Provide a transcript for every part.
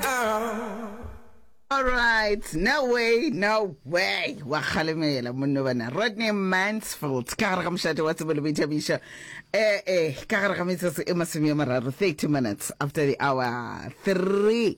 Ow. Alright, no way, no way. Wa kgalemela monno bana. Rodney Mansfield ka gare ga mošate wa tsebo le boithabišo. Eh eh, ka gare ga metsotso e masome a mararo, 30 minutes after the hour 3.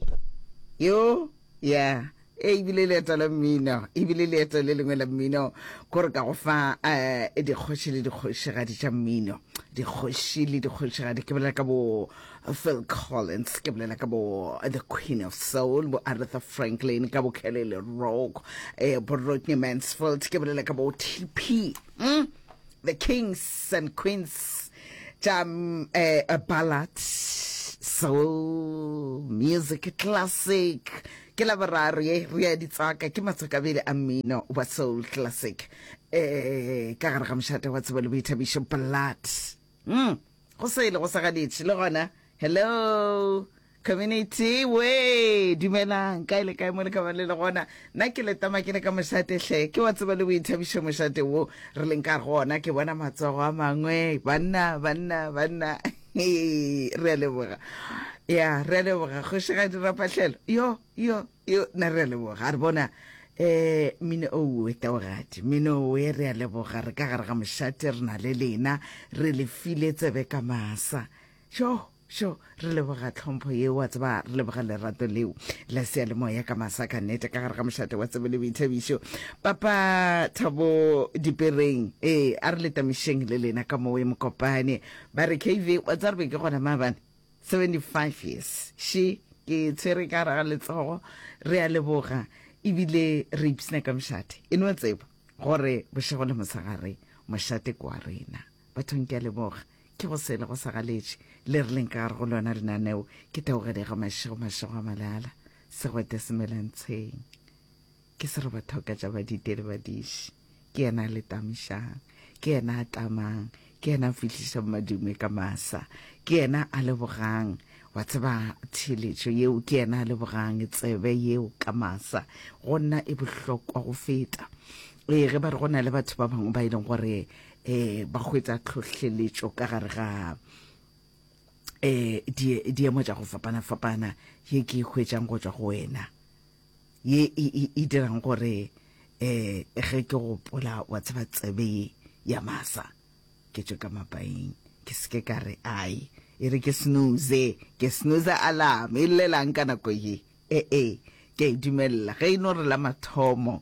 Yo, yeah. e ebile leeto la mmino ebile leeto le lengwe la mmino kore ka go fa um dikgoši le dikgošigadi tša mmino dikgoši le dikgošigadi ke bolela ka bo Phil Collins, ke bolela ka bo The Queen of Soul, bo Aretha Franklin, ka bo Kelly LeRock, eh, bo Rodney Mansfield, ke bolela ka bo TP, mm? the Kings and Queens, tša mm, eh, a ballad, soul, music, classic, ke la boraro ye re ya ditsaka ke matswakabele a mmino wa soul classic eh ka gare ga mošate wa tsebo le boithabišo blood Umm go sele go sa ganetše le gona. Hello community we dumelang kae le kae mo le ka ba le le gona nna ke letama ke le ka mošate hle ke wa tseba le boithabišo mošate wo re leng ka gona ke bona matsogo a mangwe banna banna banna re a leboga ya re a leboga kgošigadi rapatlhelo yo yo Yo, na re a leboga. A re bona eh mmine owe taogadi mmine owe re a leboga re ka gare ga mošate re na le lena re le file tsebe ka masa sho sho re leboga tlhompho yeo wa tseba re leboga lerato leo la sea le moya ka masa ka nete ka gare ga mošate wa tsebe le boithabišo papa thabo dipereng ee a re letamišeng le lena ka mowe mokopane ba re kv wa tsarebe ke gona maabane 75 years she ke tshwere ka gare ga letsogo re a leboga ebile re ipsna ka mošate e no tseba gore bošego le mosegare mošate ke wa rena bathong ke a leboga ke go sele go sa galetše le re leng ka gare go lona lenaneo ke taogele ga mašego mašego a malala segwete semelantsheng Ke serobathoka tša badite le badiši. Ke yena a letamišang. Ke yena a tlamang. Ke yena a fihlišang madume ka masa. Ke yena a lebogang. Wa tseba, theeletšo yeo, ke yena a lebogang tsebe yeo ka masa. Go nna e bohlokwa go feta. Ee, ge ba re go na le batho ba bangwe ba e leng gore um ba hwetša tlhohleletšo ka gare ga um diemo tša go fapana-fapana ye ke e hwetšang go tšwa go wena. ye e, e, e dirang gore um ge ke gopola wa tseba tsebe ye ya masa ke tšwe ka mapaeng ke seke ka re ai e re ke snooze ke snooze alarm e llelang ka nako ye ee eh, eh, ke a e dumelela ge e no re la mathomo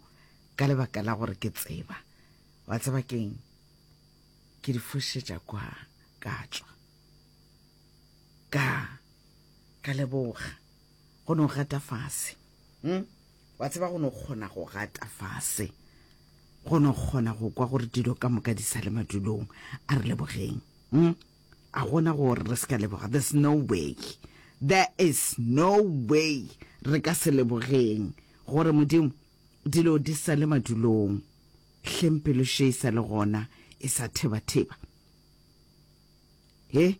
ka lebaka la gore ke tseba wa tseba keng ke di fošetša kwa ka tswa ka ka leboga Go no gata fase. Hm? Wa tseba go no kgona go gata fase. Go no kgona go kwa gore dilo ka moka di sa le madulong. A re lebogeng. Hm? A gona gore re se ka leboga. There's no way. There is no way re ka se lebogeng gore Modimo dilo di sa le madulong. Hleng pelo še e sa le gona e sa theba-theba. He?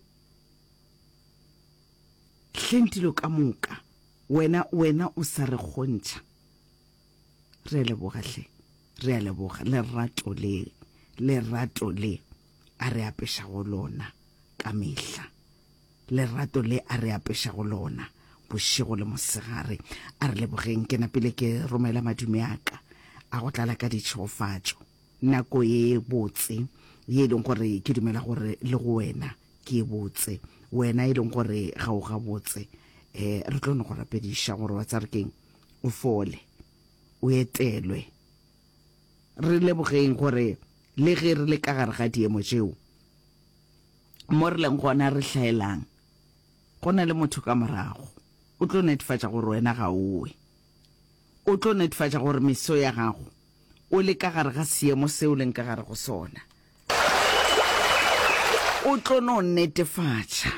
Hleng dilo ka moka, wena, wena o sa re kgontšha. Re a leboga, hle. Re a leboga, lerato le, lerato le A re apešago lona ka mehla, lerato le A re apešago lona bošego le mosegare. A re lebogeng. Ke napile ke romela madume a ka a go tlala ka ditšhegofatšo. Nako e botse, ye e leng gore ke dumela gore le go wena ke e botse, wena e leng gore ga o gabotse, um re tlo no go rapediša gore wa tseba re keng, o fole, o etelwe. Re lebogeng gore le ge re le ka gare ga diemo tšeo, mo re leng gona re hlaelang, go na le motho ka morago o tlo netefatša gore wena ga o we, o tlo netefatša gore meso ya gago, O le ka gare ga seemo se o leng ka gare go sona. O tlo no netefatša.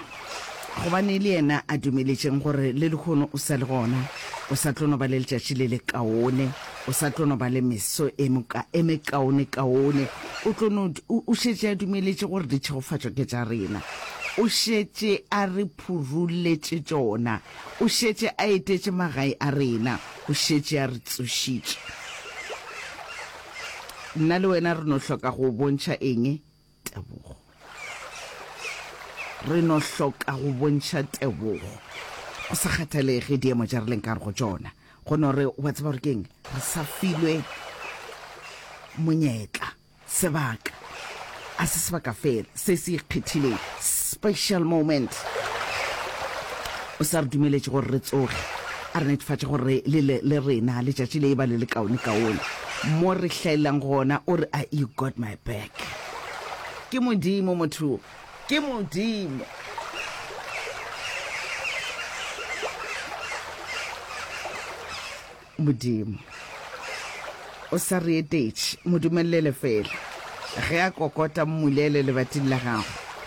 Gobane le yena a dumeletšeng gore le lehono o sa le gona, o sa tlo no ba le letšatši le le kaone, o sa tlo no ba le meso e moka e mekaone-kaone. O tlo no, o, o šetše a dumeletše gore ditšhegofatšo ke tša rena. O šetše a re phuruletše tšona. O šetše a etetše magae a rena. O šetše a re tsošitše. Nna le wena re no hloka go o bontšha eng? Tebogo. Re no hloka go bontšha tebogo. Go sa kgathalege diemo tša re leng ka gare go tšona. Go no re, wa tseba gore ke eng? Re sa filwe monyetla. Sebaka. A se sebaka fela se se ikgethileng, special moment. O sa re dumeletše gore re tsoge, a re netefatša gore le le le rena letšatši le eba le le kaone kaone mo re hlaelelang gona. O re, I, you got my back. Ke Modimo motho, ke Modimo. Modimo. O sa re etetše, mo dumelele fela. Ge a kokota, mmulele lebating la gago.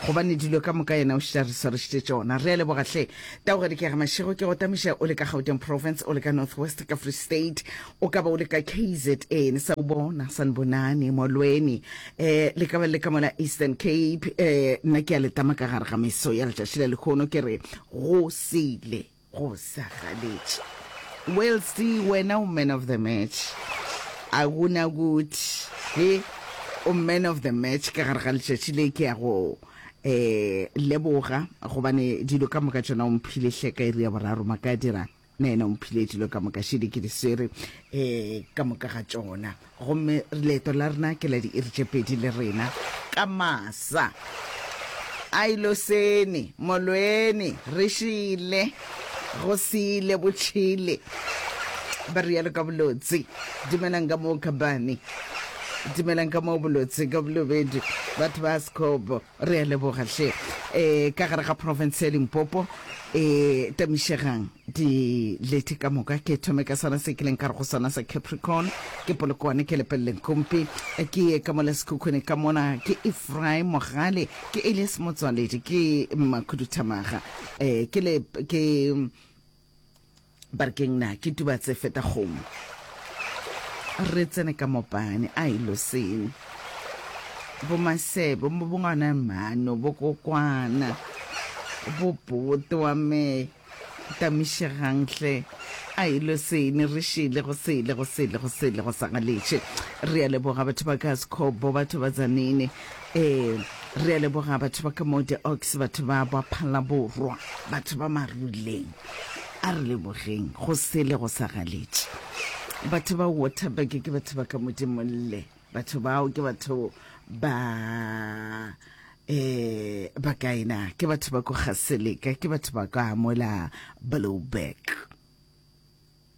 Gobane dilo ka moka Yena o šetše a re swarešitše tšona. Re a leboga, hle. Taoga Dikega Mashego, ke go tamiša o le ka Gauteng Province, o le ka North West, ka Free State, o ka ba o le ka kzn, sa bona, Sanibonani, Molweni, eh, le ka ba le ka mola Eastern Cape, eh, nna ke a le tama ka gare ga meso ya letšatši la lekhono, ke re, Go sele. Go sa galetše. Wellsty, wena o man of the match. A gona guthi he o man of the match ka gare ga letšatši le ke ya go um leboga gobane dilo ka moka tšona o mphile hle ka iri ya boraro maka a dirang na ena o mphile dilo ka moka šedi ke di swere um ka moka ga tšona Gomme leeto la rena ke la diiri tše pedi le rena. Ka masa. A ilo sene. Molweni. Re šele. Go sele. Bo tšhele. Ba rialo ka bolotse. Dumelang ka moo, Khabane. Dumelang ka moo, bolotse ka bolobedu. Batho ba Askobo. Re a leboga hle. E, ka gare ga profense ya Limpopo e tamišegang dilethe ka moka. Ke thome ka sona se kileng ka re go sona sa Capricorn, ke Polokwane, ke Lepeleleng Kompi, ke ye ka mola Sekhukhune ka mona, ke Ephraim Mogale, ke Elias Motswaledi, ke Makhuduthamaga, e, ke le, ke. Ba re keng na ke tuba tse feta kgomo. Re tsene ka mopane a ilo seng. Bo masebo mo bongwana mano bo kokwana. Bo boto wa me tamishegang hle a ilo sene re shele go sele go sele go sele go sa galetše re ya leboga batho ba ka sekhobo batho ba zanene Ee, re a leboga batho ba ka mo The Oaks, batho ba ba Phalaborwa, batho ba Maruleng. A re lebogeng, go sele go sa galetše. Batho ba Waterberg ke batho ba ka Modimolle. Batho bao ke batho ba eh ba kae na? Ke batho ba ko Gaseleka, ke batho ba ka mola Blouberg.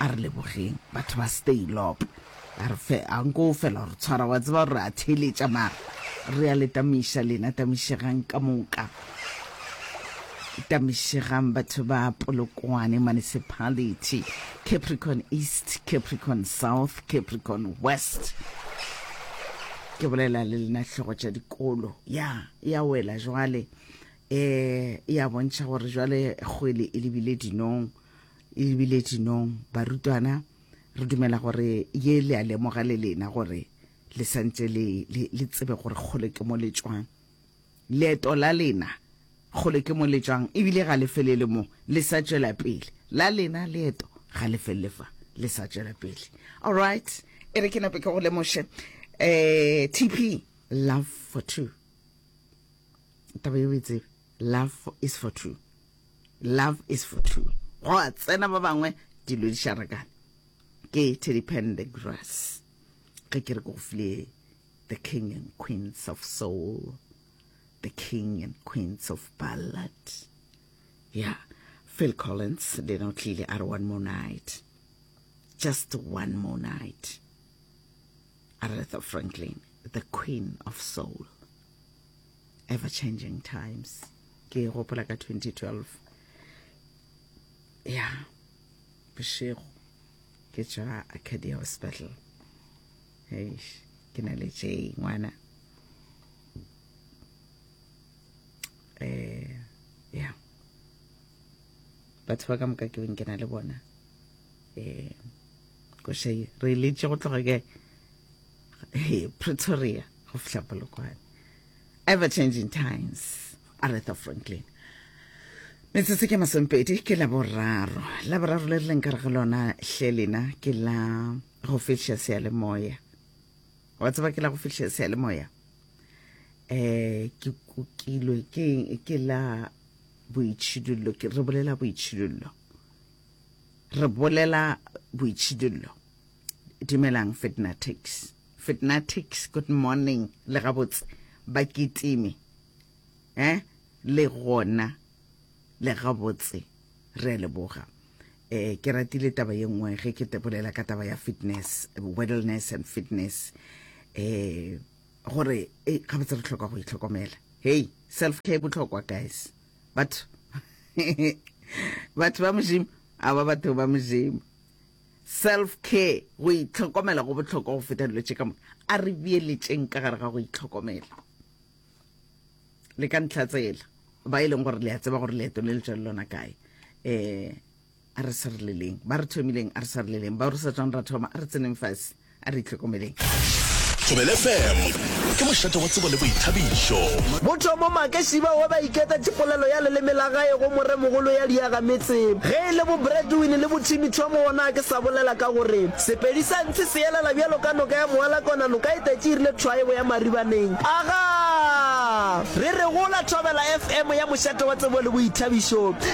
A re lebogeng batho ba Steylop. A re fe, a nko o fela gore tshwara, wa tseba gore re a theeletša mara re a le tamiša lena, tamišegang ka moka. Tamišegang batho ba Polokwane Municipality, Capricorn East, Capricorn South, Capricorn West. Ke bolela le lena hlogo tša dikolo. Ya, ya wela jwale. E, e a bontšha gore jwale kgwele e lebile dinong, e lebile dinong. Barutwana, re dumela gore ye le a lemoga le lena gore le santse le, le, le tsebe gore kgole ke mo le tšwang. Leeto la lena kgole ke mo le tšwang, ebile ga le felele mo, le sa tšwela pele. La lena leeto ga le felele fa, le sa tšwela pele. All right, e re ke nape ke go lemoše, eh, TP, love for two. taba yo betse love is for true love is for true go a tsena ba bangwe dilo di sharakane ke teddy pen the grass ge ke re ke go file the king and queens of soul the king and queens of ballad yeah phil collins le ena o tlile a re one more night just one more night Aretha Franklin, the queen of soul, ever changing times. Ke e gopola ka 2012. Ya, bošego, ke tšwa Acadia Hospital. Eish, ke na le tše ngwana. Eh, ya. Batho ba ka moka ke beng ke na le bona. Eh, koša ye re letše go tloga ke he pretoria go fihla polokwane ever changing times aretha franklin metsotso ke masompedi ke la boraro la boraro le re leng kare ga lona hle lena ke la go fihla seyalemoya wa tseba ke la go fihla seyalemoya um ke kukilwe ke la boitšhidullo re bolela boitšhidullo Re bolela boitšhidullo. Dumelang Fitnatics. Fitnatics, good morning, le gabotse bakitimi. Eh, le gona le gabotse re a leboga. Eh, ke ratile taba ye nngwe ge ke bolela ka taba ya fitness, wellness and fitness. Eh, gore eh, gabotse re tlhoka go itlhokomela. Hey, self care e botlhokwa guys. batho batho ba modimo a ba batho ba modimo self care go itlhokomela go botlhokwa go feta dilo tše ka moka a re bieletšeng ka gare ga go itlhokomela le ka ntlha tsela ba e leng gore le a tseba gore leeto le le tswa le lona kae um A re sireleleng ba re thomileng, a re sireleleng bao re sa tswang ra thoma, a re tseneng fase, a re itlhokomeleng. Thobela FM ke mošate wa tsebo le boithabišo. Mothomo Make Šiba wa ba iketa tšepolelo ya leleme la gae go moremogolo ya diaga metse. Ge e le bo Bradwin le bo Timmy Thomo o na ke sa bolela ka gore Sepedi sa ntshi se elela bjalo ka noka ya moala kona noka e tetše e rile thwa e bo ya maribaneng. Aga! Re re gola Thobela FM ya mošate wa tsebo le boithabišo.